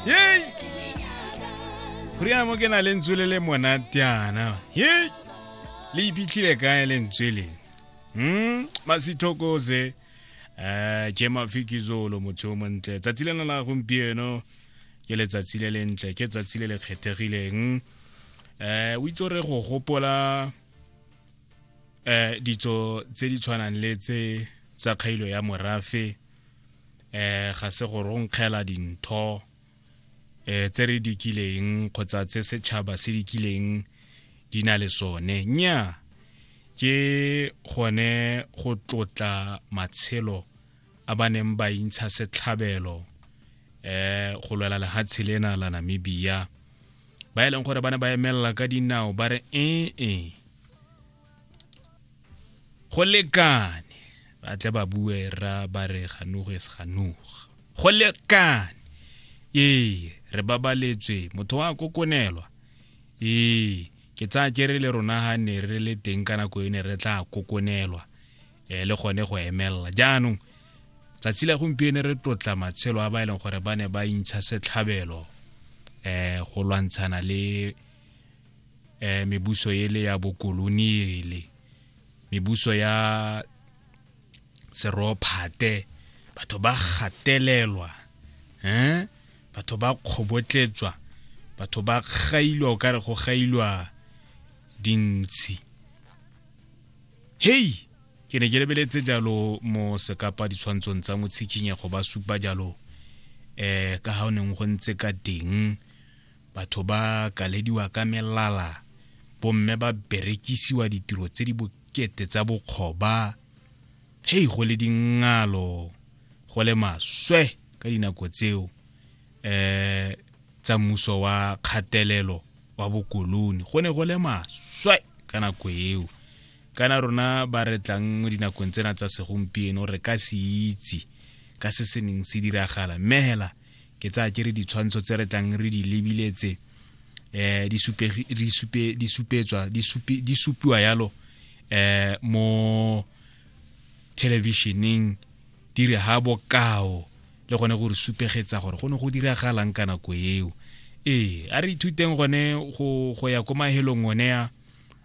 yei goriana mo ke na lentswe le le monatiana yei le iphitlhile kae lentswe le hmm masithokoze eh ke mafikizolo motho o montle tsatsi lena la gompieno ke letsatsi le lentle ke tsatsi le le kgethegileng eh o itse re go gopola eh ditso tse di tshwanang le tse tsa kgailo ya morafe eh ga se go ronkgela dintho eh tse re dikileng kgotsa tse setšhaba se dikileng di na le sone nya ke gone go tlotla matshelo a ba neng ba intsha setlhabelo eh go lwela lehatshe lena la Namibia ba e leng gore ba ne ba emelela ka dinao ba re ee go lekane ba tle ba bue ra ba re ganugo e se ganuga go lekane ee re babaletswe motho wa kokonelwa ee ke tsaya ke re le rona ga ne re le teng ka nako e ne re tla kokonelwa um le gone go emelela jaanong tsatsi la gompieno re tlotla matshelo a ba e leng gore ba ne ba intsha setlhabelo um go lwantshana le eh, mebuso ele ya bokoloniele mebuso ya serophate batho ba gatelelwa eh batho ba kgobotletswa batho ba gailwa o ka re go gailwa dintshi hei ke ne ke lebeletse jalo mo sekapa ditshwantshong tsa motshikinyego ba supa jalo eh ka ha o neng go ntse ka teng Batho ba kalediwa ka melala, bomme ba berekisiwa ditiro tse di bokete tsa bokgoba. Hei, go le dingalo, go le maswe ka dinako tseo um tsa mmuso wa kgatelelo wa bokoloni. Go ne go le maswe ka nako eo. Kana rona ba re tlang mo dinakong tsena tsa segompieno re ka se itse ka se se neng se diragala mme hela ke tsaya ke re ditshwantsho tse re tlang re di lebile tse eh di supe di supe di supetswa di supe di supiwa yalo eh mo televisioneng di re ha bokao le gone gore supegetsa gore go ne go diragalang ka nako eo ee a re ithuteng gone go go ya ko mahelong one a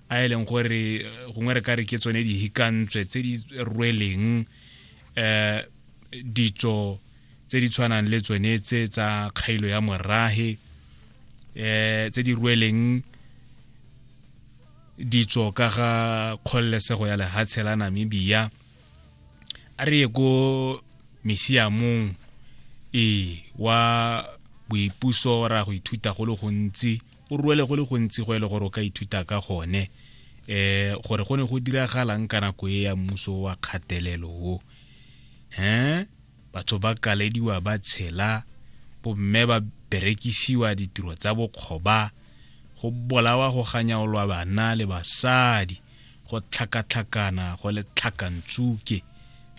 a e leng gore eh, gongwe re ka re ke tsone dihikantswe tse di rweleng eh ditso tse di tshwanang le tsone tse tsa kgailo ya morage eh tse di rueleng ditso ka ga kgololesego ya lehatshe la namibia a re ye ko misiamong ee wa boipuso ra go ithuta go le gontsi o ruele go le gontsi go e le gore o ka ithuta ka gone eh gore go ne go diragalang ka nako e ya mmuso wa kgatelelo o he Batho ba kalediwa ba tshela, bomme ba berekisiwa ditiro tsa bokgoba, go bolawa go ganyaolwa bana le basadi, go tlhakatlhakana go le tlhakantsuke.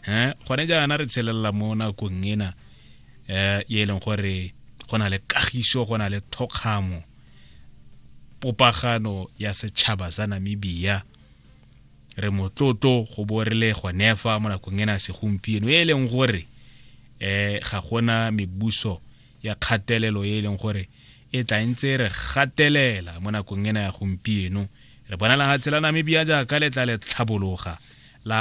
Eh, gone jaana re tshelela mo nakong ena eh e leng gore go na le kagiso go na le thokgamo popagano ya setšhaba sa Namibia re motlotlo go bo re le gonefa mo nakong ena segompieno e e leng gore um ga gona mebuso ya kgatelelo e e leng gore e tla ntse re gatelela mo nakong ena ya gompieno re bona la ga tshela namibia jaaka le tla le tlhabologa la